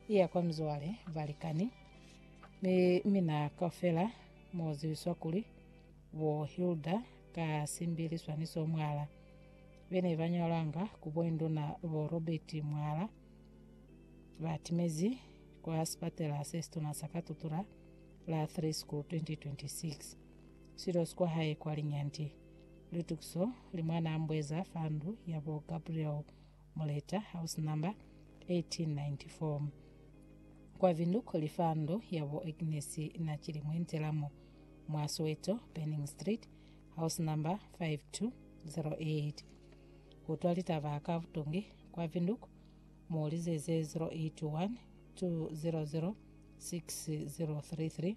Iya kwa mizwale, balikani, ni mina kaufela mu ziwiswa kuli bo Hilda ka simbili swaniso mwala. Be ne ba ñolanga ku bo induna bo Robert mwala ba timezi kwa sipatela se situna sa ka Tutura la 3 School 2026. Silo si kwa hae kwa linyanti. Litukiso li mwana ambweza fa ndu ya bo Gabriel Muleta, house number 1894. Kwa Vinduk li fa ndo ya bo Agnes na Chilimwe ntela mo, mwa Soweto, Burning Street, house number 5208. Ku twa litaba ka butongi kwa Vinduk, mu lizeze 081 200 6033.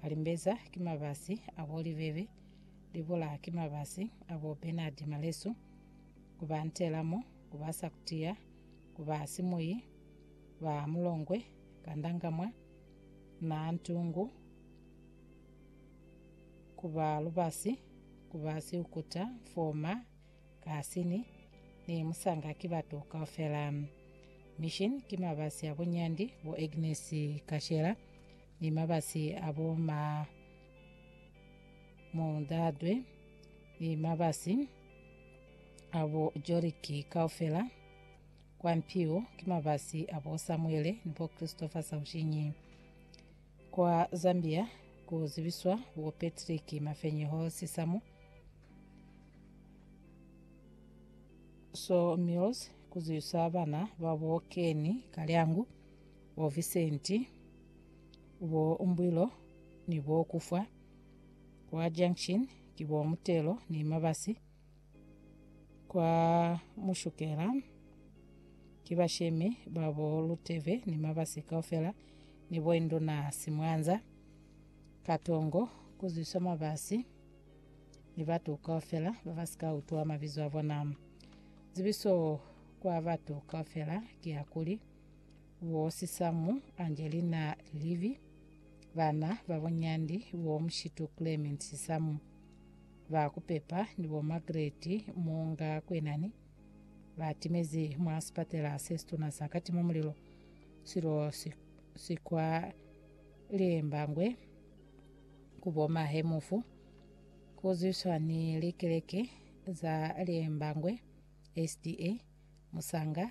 Kalimbeza ki mabasi a bo Libebe, Libola ki mabasi a bo Bernard Malesu, ku ba Ntelamo, ku ba Sakutia, ku ba Simuyi, ba Mulongwe, Kandangamwa, na Ntungu, ku ba Lubasi, ku ba Siukuta, Mfoma, Kasini, ni Musanga ki batu kaufela. Mission ki mabasi a bo Nyandi, bo Agnes Kashela, ni mabasi a bo ma Moldadwe, ni mabasi a bo Joriki kaufela, kwa mpiwo ki mabasi a bo Samuele ni bo Christopher Saushinyi. Kwa Zambia ku zibiswa bo Patrick Mafenyeho Sisamu, Sawmills ku zibiswa bana ba bo Kenny Kalyangu, Bo Visenti, bo Mbwilo ni bo Kufwa kwa Junction ki bo Mutelo ni Mabasi kwa Mushukela ki bashemi ba bo Luteve ni Mabasi kaufela ni bo Induna Simwanza, Katongo, Kuzwiswa Mabasi ni batu kaufela ba ba si ka utwa mabizo a bona. Zibiso kwa batu kaufela ki ya kuli, bo Sisamu Angelina Livy, bana ba bo Nyandi bo Mushitu Clement Sisamu, ba ku Pepa ni bo Margaret Muunga Kwenani, ba timezi mwa sipatela se situna sa Katima Mulilo silo si, si kwa Liembangwe ku bo Mahe Mufu, ku zwiswa ni likeleke za Liembangwe SDA Musanga,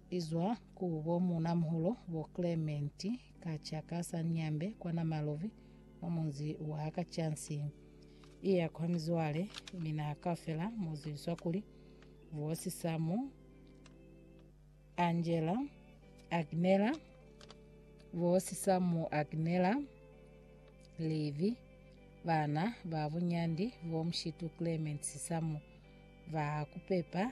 Izwa ku bo munamuholo bo Clement kaca ka sa Nyambe kwa Namalovi mwa munzi wa Kachansi. Iya kwa mizwale mina kafela muziliswa kuli Vosi Samu, Angela, Agnela, Vosi Samu Agnela, Levi, bana ba bunyandi bo Mshitu Clement Samu, ba kupepa